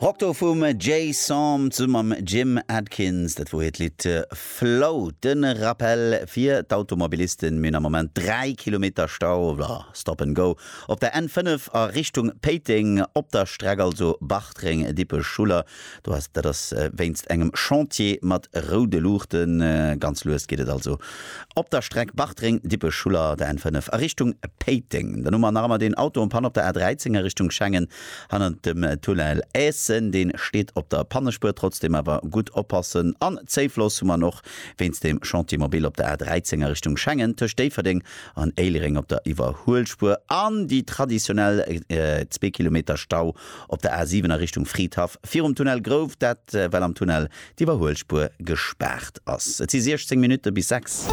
Rock do vum Jay Som zu mam Jim Adkins, dat wor hiert Lidd Float. Den Rappel fir d'Automobilisten, mir hunn am Moment 3 Kilometer Stau, oder Stop and Go, op der N 5 a Richtung Péiteng, op der Streck also Bartreng, Dippech, Schuller. Do ass et. Dat ass wéinst engem Chantier mat roude Luuchten. Ganz lues geet et also op der Streck Bartreng, Dippech, Schuller, der N5 a Richtung Péiteng. Dann hu mer nach ëmmer deen Auto en panne op der A13 a Richtung Schengen hannert dem Tunnel Eessen. Dee steet op der Pannespuer. Trotzdeem awer gutt oppassen. An Zéifloss hu mer och wéinst dem Chantier mobil op der A13 a Richtung Schengen tëscht Déifferdeng an Éilereng op der Iwwerhuelspuer. An déi traditionell zwee Kilometer Stau Op der A 7 a Richtung Fridhaff virum Tunnel Grouft, dat well am Tunnel d'Iwwerhuelspuer gespaart ass. Et si 16 Minutte bis 6.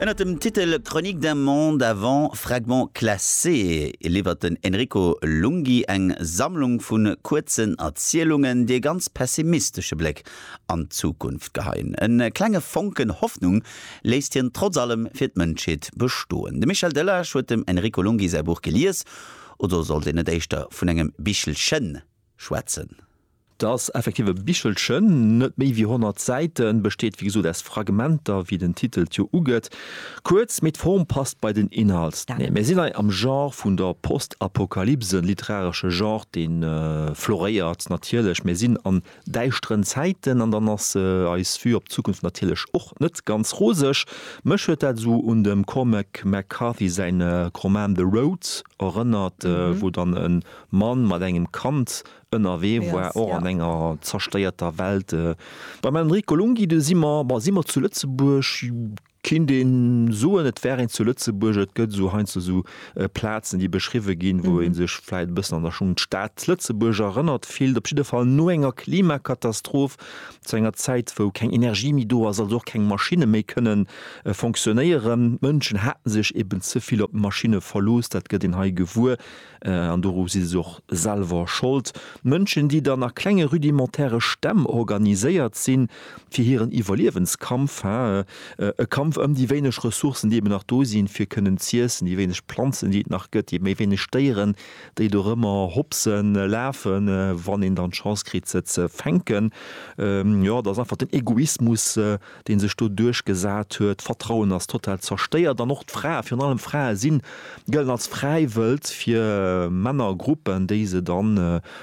Ënnert dem Titel Chronique d'un monde avant fragments classés liwwert den Enrico Lunghi eng Sammlung vu kuerzen Erzielungen, déi e ganz pessimistesche Bléck an d'Zukunft geheien. E klenge Fonken Hoffnung léisst hien trotz allem fir d'Mënschheet bestoen. De Michel Delage huet dem Enrico Lunghi säi Buch gelies Oder sollt een net éischter vun engem Bichelchen schwätzen? Dass effektiv e Bichelchen, net méi wéi 100 Säiten, besteet, wéi gesot, aus Fragmenter, wéi den Titel et jo ugëtt. Kuerz, mee d'Form passt bei den Inhalt. Neen, mir sinn hei am Genre vun der Postapokalypse, literaresche Genre, dee floréiert natierlech. Mir sinn an däischteren Zäiten an dann ass eis Vue op d'Zukunft natierlech och net ganz roseg. Mech huet dat esou un dem Cormac McCarthy säin Roman The Road erënnert, wou dann e Mann mat engem Kand ënnerwee war, och an enger zersteierter Welt. Beim Enrico Lunghi, do si mer, bon, si mer zu Lëtzebuerg? Kinnt een soen et wär een zu Lëtzebuerg? Et gëtt esou heiansdo esou Plazen déi beschriwwe ginn, wou ee sech vläit e bëssen an der Schung d'Stad Lëtzebuerg erënnert fillt. Op jidde Fall no enger Klimakatastroph, zu enger Zäit wou keng Energie méi do ass, also och keng Maschinne méi kënne fonctionnéieren. D'Mënschen haten sech eben ze vill op d'Maschinne verlooss, dat gëtt een hei gewuer. An doru si se och selwer Schold. Mënschen, déi dann a klenge rudimentäre Stämm organiséiert sinn, fir hiren Iwwerliewenskampf, hä? E Kampf ëm déi wéineg Ressourcen, déi eben nach do sinn, fir kënnen z'iessen, déi wéineg Planzen, déi et nach gëtt, déi méi wéineg Déieren, déi do rëmmer hopsen, lafen, wann een dann d'Chance kritt, se ze fänken. Jo, et ass einfach den Egoismus, deen sech do duerchgesat huet, d'Vertrauen ass total zerstéiert an och d'Frae, virun allem d'Frae sinn, gëllen als Fräiwëld fir Männergruppen, déi se da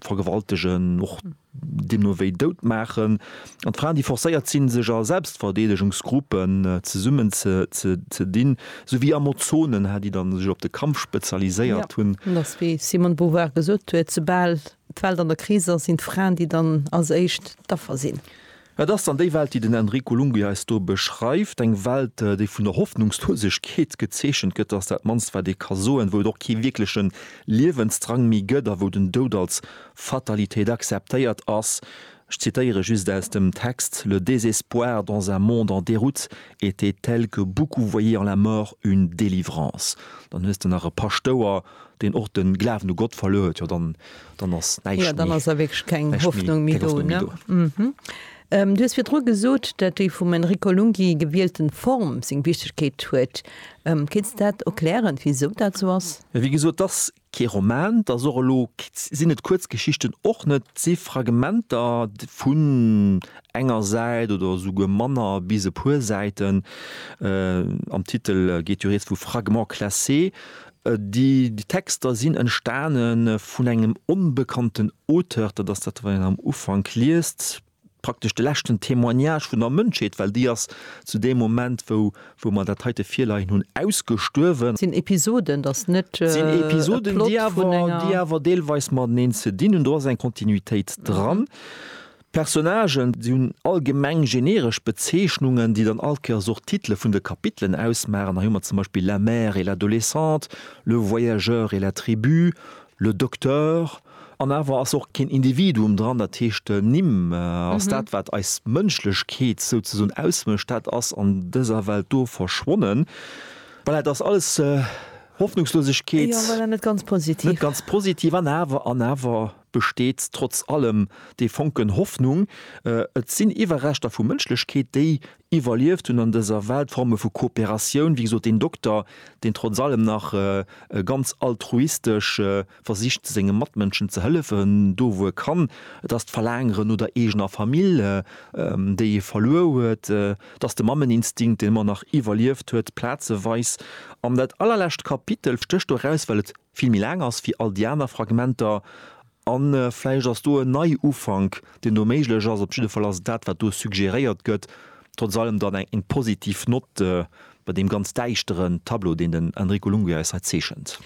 vergewaltegen, och deemno wéi dout maachen. An d'Fraen, déi forcéiert sinn, sech a Selbstverdeedegungsgruppen zesummen ze dinn, sou wéi Amazonen, hä, déi da sech op de Kampf spezialiséiert hunn. Et ass wéi d'Simone de Beauvoir gesot huet, soubal D'Welt an der Kris ass, sinn d'Fraen, déi dann als éischt d'Affer sinn. Et ass dann déi Welt, déi den Enrico Lunghi eis do beschreift, eng Welt, déi vun der Hoffnungslosegkeet gezeechent gëtt, dat ass dat mannst, wat ee ka soen, wou et och kee wierkleche Liewensdrang méi gëtt a wou den Doud als Fatalitéit akzeptéiert ass. Ech zitéiere just aus dem Text, Le désespoir dans un monde en déroute était tel que beaucoup voyaient en la mort une délivrance. Dann hues de nach e Paschtouer, deen och de Glawen u Gott verluer huet, jo dann, dann ass näischt méi, näischt méi, keng Hoffnung méi do, ne? Du hues virdru gesot, dat déi vum Enrico Lunghi gewielten Form seng Wichtegkeet huet. Kéints de dat erklären, wisou dat esou ass? Wéi gesot, 't ass Kee Roman, 't ass och elo, sinn et Kuerzgeschichten och net, 't si Fragmenter vun enger Säit oder esouguer manner bis e puer Säiten, am Titel geet jo rieds vu fragments classés. Déi Texter sinn entstane vun engem onbekannten Auteur, dat ass dat wat een am Ufank liest. praktesch de leschten Témoignage vun der Mënschheet, well déi ass zu deem Moment, wou, wou mer dat heite virleien hunn, ausgestuerwen. Sinn Episoden, et ass net e Plot vun enger. Sinn Episoden, déi awer, déi awer deelweis mateneen ze dinn hunn. Do ass eng Kontinuitéit dran. D'Personnagen, se hunn allgemeng generesch Bezeechnungen, déi dann all Kéiers och d'Titele vun de Kapitelen ausmaachen. Hei hu mer zum Beispill La mère et l'adolescente, Le voyageur et la tribu, Le Docteur, an awer ass och keen Individuum dran, dat heescht Nimm ass dat wat eis Mënschlechkeet souzesoen ausmécht, dat ass an dëser Welt do verschwonnen. Voilà, et ass alles Hoffnungslosegkeet. Jo, voilà, net ganz positiv. Net ganz positiv, an awer, an awer besteet trotz allem dee Fonken Hoffnung. Et sinn Iwwerreschter vu Mënschlechkeet, déi Iwwerlieft hunn an dëser Welt Forme vu Kooperatioun, wéi gesot, deen Dokter, deen trotz allem nach ganz altruistesch versicht senge Matmënschen ze hëllefen, do wou e kann, et ass d'Verlaangere no der eegener Famill, déi e verluer huet, et ass de Mammeninstinkt, deen ëmmer nach iwwerlieft huet, plazeweis. An dat allerlescht Kapitel stécht do eraus, well et vill méi laang ass wéi all déi aner Fragmenter a vläicht ass do en Neiufank, deen do méiglech ass. Op jidde Fall ass et dat, wat do suggéréiert gëtt. Trotz allem dann eng positiv Nott bei deem ganz däischteren Tableau, deen den Enrico Lunghi eis hei zeechent.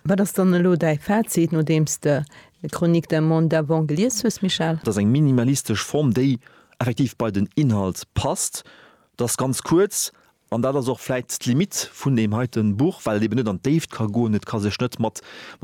Wat ass dann elo däi Fazit, nodeem s de Chronique d'un monde d'avant gelies hues, Michel? Et ass eng minimalistesch Form, déi effektiv bei den Inhalt passt. Et ass ganz kuerz, An dat ass och vläit d'Limite vun deem heite Buch, well et eben net an d'Déift ka goen. Et ka sech net mat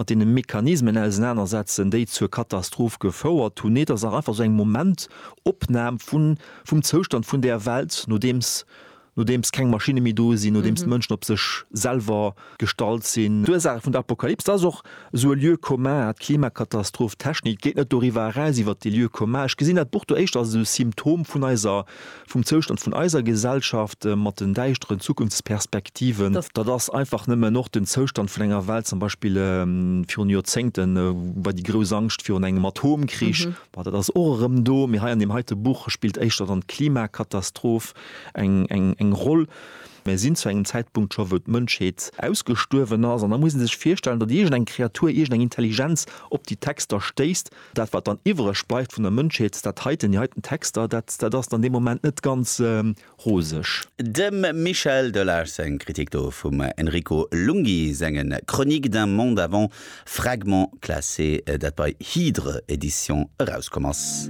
deene Mechanismen ausenanersetzen, déi zur Katastroph gefouert hunn. Nee, et ass nach einfach esou eng Momentopnam vum Zoustand vun där Welt, nodeems keng Maschinne méi do sinn, nodeems d'Mënschen op sech selwer gestallt sinn. D'Ursaache vun der Apokalyps, dat ass och esou e Lieu commun, d'Klimakatastroph, d'Technik geet net doriwwer eraus, iwwert dee Lieu commun. Ech gesinn dat Buch do éischter als esou e Symptom vun eiser, vum Zoustand vun eiser Gesellschaft mat den däischteren Zukunftsperspektiven. Dat ass einfach nëmmen och den Zoustand vun enger Welt, zum Beispill virun Joerzéngte war déi grouss Angscht virun engem Atomkrich, bon, dat ass och erëm do, mee hei an deem heite Buch spillt éischter dann d'Klimakatastroph eng Roll. Mir sinn zu engem Zäitpunkt scho wou d'Mënschheet ausgestuerwen ass an da muss ee sech virstellen, datt iergend eng Kreatur, iergend eng Intelligenz op déi Texter stéisst. Dat wat dann iwwereg bleift vun der Mënschheet, dat heiten, déi heiten Texter, dat dat ass dann dee Moment net ganz roseg. Dem Michel Delage seng Kritik do vum Enrico Lunghi senge Chroniques d'un monde avant, fragments classés, dat bei Hydre Edition erauskomm ass.